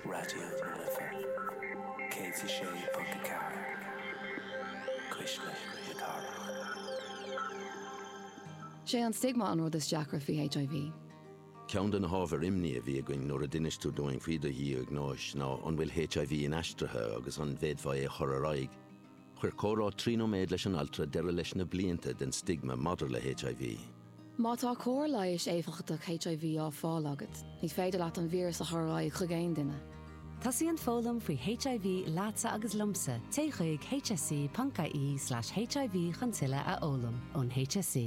Raidió na Life 106.4, Cuisle na Cathrach. Sé an stigma an rud is deacra faoi HIV. Ceann de na hábhair imní a bhí againn nuair a d'inis tú dúinn faoi do dhiagnóis ná an bhfuil HIV inaistrithe agus an bhféadfá é a chur ar aghaidh. Chuir comhrá trí nóiméad leis an altra deireadh leis na blianta den stigma maidir le HIV. Má tá cóir leighis éifeachtach HIV á fáil agat, ní féidir leat an víreas a chur ar aghaidh chuig aon duine. Tosaíonn foghlaim faoi HIV leatsa agus liomsa, téigh chuig hse.ie/hiv chun tuilleadh a fhoghlaim ón HSE.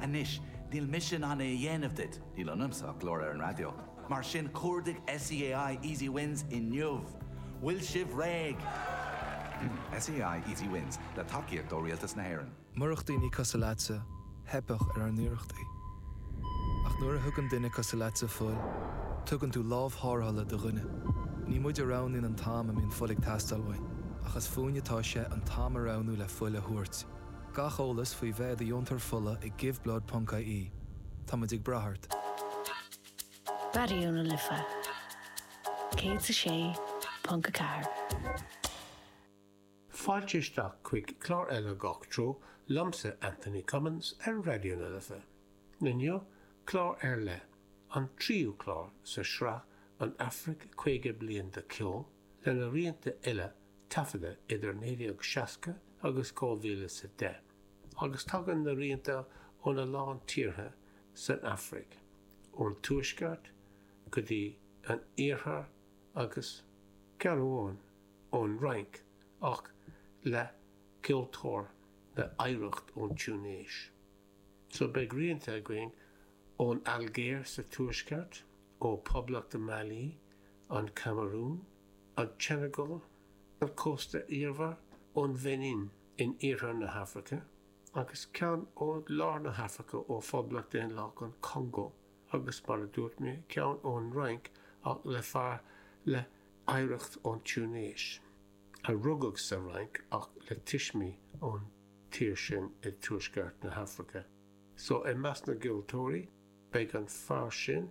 Anois, níl mise in ann é a dhéanamh duit, níl ionamsa ach glór ar an raidió, mar sin cuardaigh SEAI Easy Wins inniu! Bhfuil sibh réidh? SEAI Easy Wins, le tacaíocht ó Rialtas na hÉireann. Murach daoine cosuil leatsa, theipfeadh ar ár n-iarrachtaí. Ach nuair a thugann duine cosuil leatsa fuil, tugann tú lámh thárrthala do dhuine. Ní muid a roghnaíonn an t-am a mbíonn fuil ag teastáil uainn, ach is fúinne atá sé an t-am a roghnú le fuil a thabhairt. Gach eolas faoi bheith i do dheontóir fola ag giveblood.ie. Táimid ag brath ort. Raidió na Life 106.4. Fáilte isteach chuig clár eile Gach Treo liomsa Anthony Cummins ar Raidió na Life. Inniu, clár ar leith, an tríú clár sa sraith An Afraic 50 Bliain de Cheol, lena rianta uile taifeadta idir 1960 agus 2010 agus tagann na rianta óna lán tíortha san Afraic, ón tuaisceart go dtí an iarthar agus, ceann amháin, ón Fhrainc ach le ceoltóir le hoidhreacht ón Túinéis. So beidh rianta againn ón Ailgéir sa tuaisceart, ó Poblacht Mali, an Camarún, an tSeineagáil ar chósta iarthar ón Bheinin in iarthar na hAfraice, agus ceann ó lár na hAfraice ó Phoblacht Dhaonlathach an Chongó, agus mar a dúirt mé, ceann ón Fhrainc ach le fear le hoidhreacht ón Túinéis, a rugadh sa Fhrainc ach le tuismí ón tír sin i dtuaisceart na hAfraice. So, i measc na gceoltóirí, beidh an fear sin,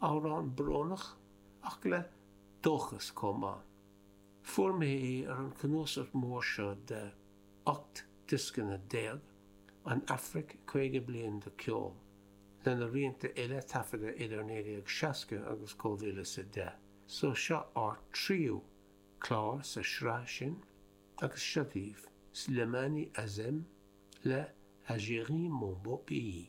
Amhrán brónach, ach le dóchas chomh maith. Fuair mé é ar an cnuasach mór seo de 18 diosca, An Afraic, 50 bliain de cheol, lena rianta uile taifeadta idir 1960 agus 2010. So seo ár dtríú clár sa sraith sin agus seo daoibh, Slimane Azem le Algérie mon beau pays.